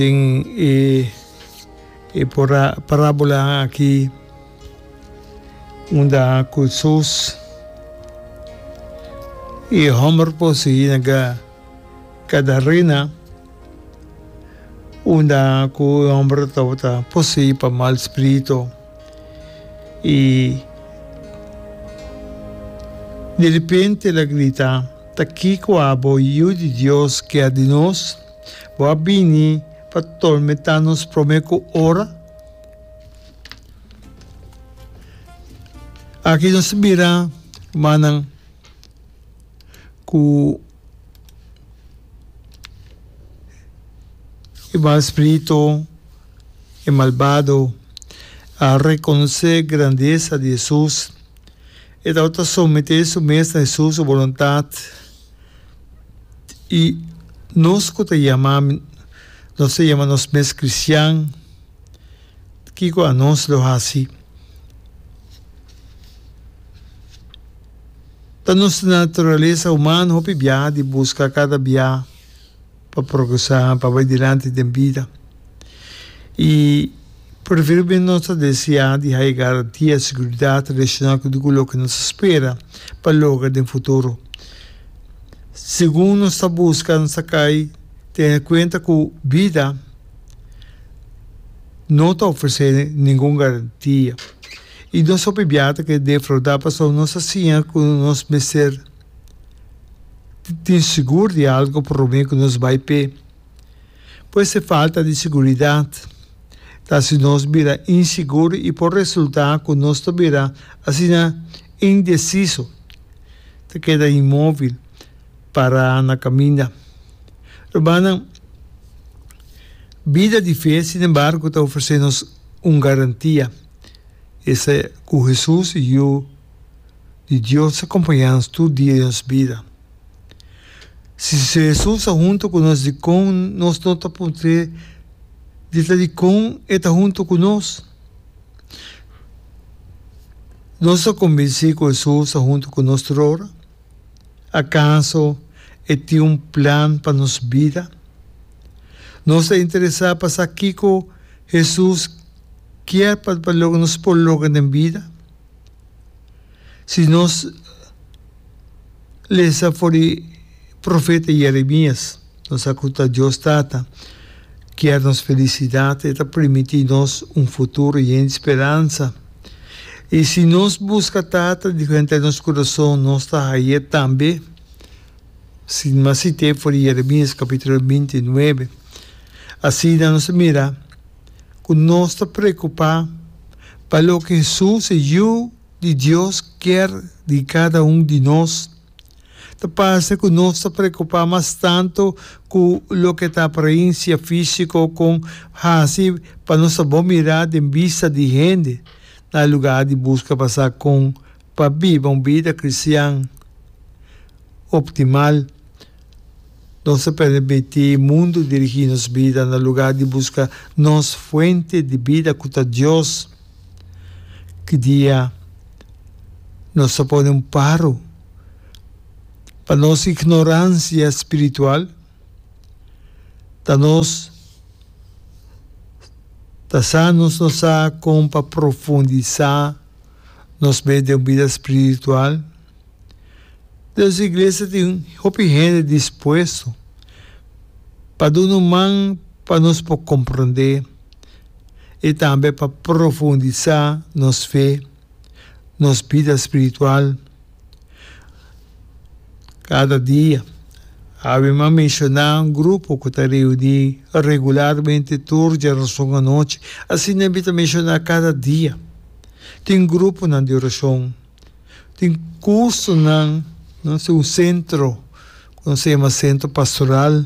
Tin e e pora parabolanan aki unda ku sus e hòmber por sigui na Gadarena, unda ku e hòmber tabata posei pa mal spiritu, i derepente el a grita, Ta kiko abo, Yu di Dios, keda di nos? Bo a bini pa tormentá nos promé ku ora? Aki nos ta bira rumannan ku e mal spritu, e malbado, a rekonosé e grandesa di Hesus. E tabata someté su mes na Hesus su boluntat. I nos ku ta yama nos ta yama nos mes kristian, kiko anos lo hasi? Ta nos naturalesa humano hopi biaha di buska kada biaha pa progresá, pa bai dilanti den bida. Y prevero bien nos ta desea di haya garantia, seguridad relacionado cu tucu loke nos ta spera pa logra den futuro. Segun nos ta busca nos ta cay tene cuenta cu bida no ta ofrece ningun garantia y nos hopi biaha ta kere defrauda pasobra nos ta siña cu nos mester tin segur di algo por lo menos cu nos bay p'e. Pues e falta di siguridat ta haci nos bira insigur y por resulta cu nos ta bira asina indeciso, ta keda inmovil, para na caminda. Rumannan, bida di fe sin embargo ta ofrece nos un garantia, esa cu Jesus, Yu di Dios, ta acompaña nos tur dia di nos bida. Si Jesus a hunto ku nos dikon nos no ta por te di ta dikon e ta hunto ku nos? Nos ta kombinsí ku Jesus ta hunto ku nos tur ora? Akaso e tin un plan pa nos bida? Nos ta interesá pa sa kiko Jesus kier pa loke nos por logra den bida? Si nos lesa for di profeta Jeremias, nos sa ku ta Dios Tata kier nos felisidat, e ta primiti nos un futuro yen di speransa. I si nos buska Tata di frente nos kurason, nos ta haia e tambe, sima sité for di Jeremias kapitulo binti nuebe. Asina nos a mira. ku nos ta preokupá pa loke Hesus, e Yu di Dios, kier di kada un di nos. Ta parse ku nos ta preokupá mas tantu ku loke ta aparensia físiko kon hasi pa nos ta bon mirá den bista di hende, na lugar di buska pa sa kon Pa biba un bida kristian optimal, nos ta permití mundu dirigí nos bida na lugá di buska nos Fuente di bida ku ta Dios. Ki dia nos ta pone un paro pa nos ignoransia spiritual? Ta nos ta sa nos no sa kon pa profundisá? Nos bay den un bida spiritual. Dios Iglesia tin hopi hende dispuesto pa duna un man pa nos por comprende y tambe pa profundisa nos fe, nos bida spiritual. Kada dia, hawe mas menshoná un grupo ku ta reuní regularmente tur djarason anochi. Asina e bin ta menshoná kada dia. Tin gruponan di orashon. Tin kursonan. Nos tin un sentro ku nos a yama Sentro Pastoral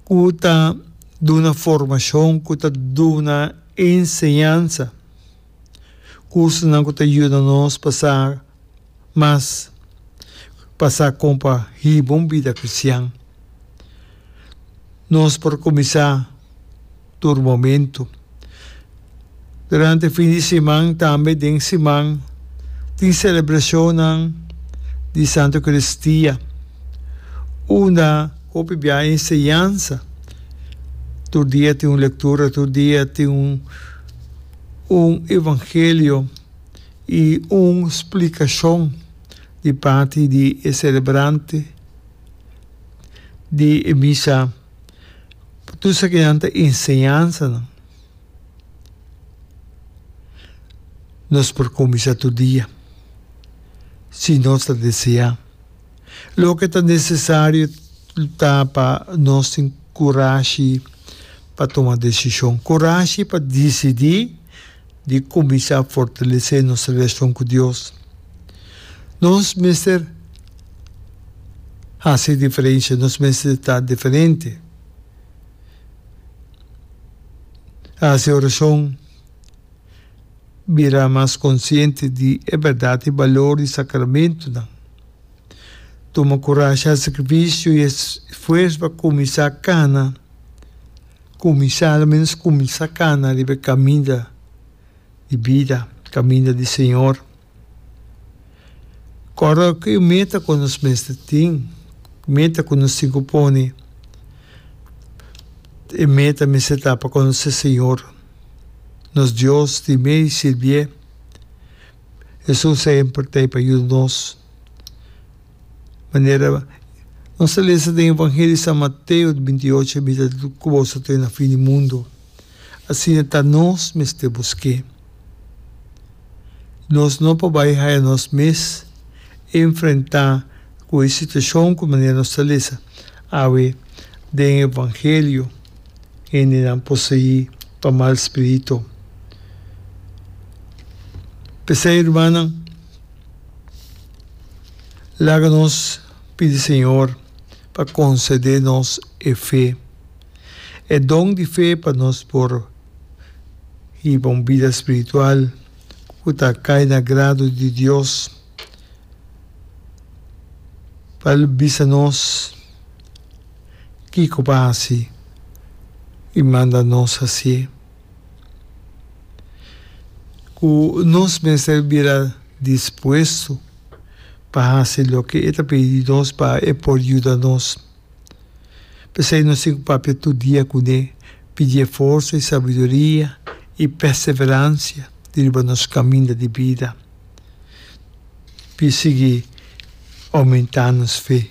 ku ta duna formashon, ku ta duna enseñansa. Cursonan cu ta yuda nos pa sa mas pa sa con pa hiba un bida cristian. Nos por cuminsa tur momento. Durante fin di siman tambe den siman tin celebracionnan di Santo Eucaristia unda hopi bia enseñansa. Tur dia tin un lectura, tur dia tin un. un evangelio i un splikashon di parti di e selebrante di e misa pa tur esakinan nan ta enseñansanan. Nos por kuminsá tur dia si nos ta deseá. Loke ta nesesario ta pa nos tin kurashi pa tuma desishon. Kurashi pa disidí di kuminsá fortalesé nos relashon ku Dios. Nos mester hasi diferensha, nos mester ta diferente. Hasi orashon. Bira mas konsiente di e bèrdat i balor di sakramentunan. Tuma kurasha, sakrifisio i esfuerso pa kuminsá kana. Kuminsá, aloménos kuminsá kana riba e kaminda di bida, kaminda di Señor. Kòrda ku e meta ku nos mester tin, meta ku nos tin ku pone. E meta mester ta pa konosé Señor. nos Dios di mei sirbié. Es un sehempel t'ei pa yuda nos. Manera nos ta lesa den Evangelio di San Mateo di binti ocho, Mi ta ku boso te na fin di mundu. Asina ta nos mester busk'é. Nos no por bai haya nos mes enfrentá ku e situashon ku manera nos ta lesa awe den Evangelio. hendenan poseí pa mal spiritu. P'esei, rumannan, laga nos pidi Señor pa konsede nos e fe, e don di fe pa nos por hiba un bida spiritual ku ta kai na grado di Dios, pa el bisa nos. Kiko pa hasi i manda nos hasi e? Ku nos mester bira dispuesto pa hasi loke e ta pidi di nos pa e por yuda nos. P'esei nos tin ku papia tur dia kuné, pidi e forsa i sabiduria i perseveransia di riba nos kaminda di bida pi sigui oumentá nos fe.